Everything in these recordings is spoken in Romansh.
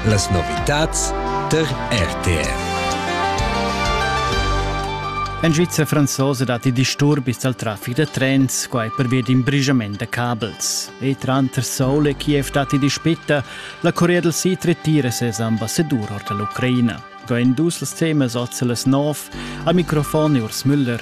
Las novitads tar RTR. En Svizra franzosa datti disturbis dal traffic da trens, quai pervia d'in brigiament da cabels. E tranter Seoul e Kiev datti dispita, la Corea del Sid retira ses ambassadur ord l'Ucraina. Qua en dus las temas oz las nov. Al microfon Urs Müller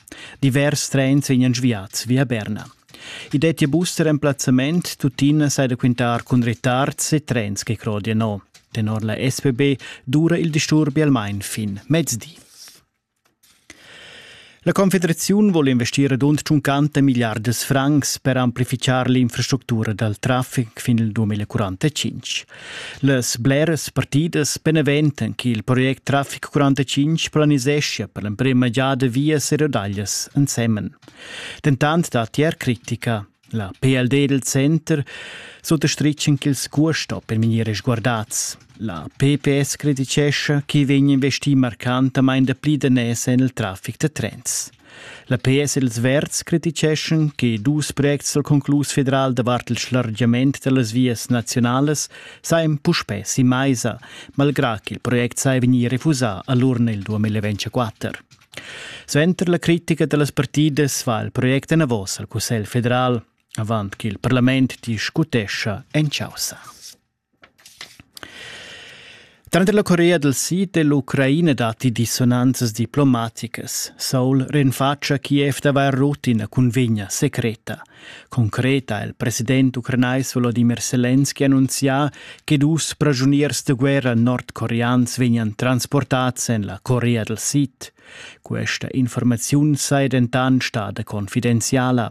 Divers trens vegnan sviats via Berna. I dettia bus da remplazzament, tuttina sai da quintar cun retards e trens che crodia no. Tenor la SPB dura il disturbi almain fin mezdi. La Confederaziun vuole investire rund 50 miliardas francs per amplificar l'infrastruttura dal traffic fin il 2045. Las bleras partidas beneventan che il project Traffic 45 planiseschia per l'emprema giada vias e rodaglias ensemen. Dentant dat er critica. La PLD del Center sottastritschen ch'ils custo per minire sguardats. La PPS criticescha che vegn investì marcantamain dapli danès en il traffic da trens. La PS e ils Verds criticheschan che dus projects dal conclus federal davart il schlargiament da las vias naziunalas sajan puspè sin maisa, malgrà ch'il project saja vegnì refusà a l'urna il 2024. Suenter la critica da las partidas va il project enavos al Cussegl federal, avant ch'il parlament discutescha en chaussa. Tranter la Corea dal Sid e l'Ucraina datti dissonanzas diplomaticas. Seoul rinfatscha Kiev d'avair rut ina cunvegna secreta. Concreta ha il president ucranais Volodimir Selenski annunzià che dus pragiuniers da guerra nordcoreans vegnan transportads en la Corea dal Sid. Questa informaziun saja dentant stada confidenziala.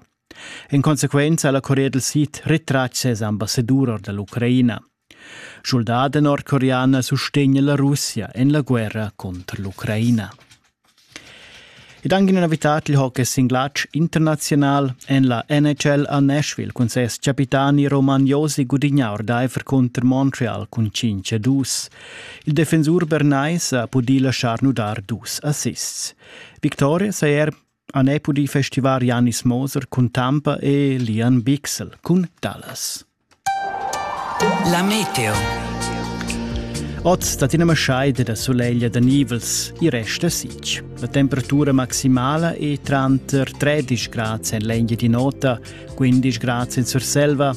En consequenza ha la Corea dal Sid retratg ses ambassadur or da l'Ucraina. Schuldaden nordcoreana sustegna la Russia en la guerra contro l'Ucraina. Ed anche in novità il hockey singlatsch internazional en la NHL a Nashville cun ses capitani Roman Josi gudigna ordaifer contro Montreal cun 5-2. Il defensur bernais ha pudì lasciar nudar dus assists. Victoria saja er han ei pudì festivar Janis Moser cun Tampa e Lian Bichsel cun Dallas. La meteo. Oz dat ina maschaida da soleglia da nivels, i resta sic. La temperatura maximala è tranter 13 gradi en l'Engia di Nota, 15 gradi in Surselva,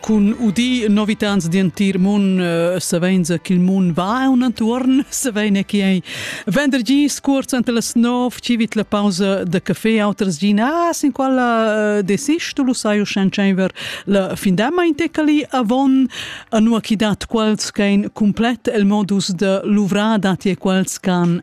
cun udì novitads d'entir mund savenza ch'il mund va aun entuorn, savein che ei vendergi scuorz ante las nov, ci vit la pausa da café, auters gin, ah, sin quella desisch tu lu sai uschen tscheiver la findama in tecali avon, anua chi dat quels ch'ein complet el modus de luvrar dati e quels ch'han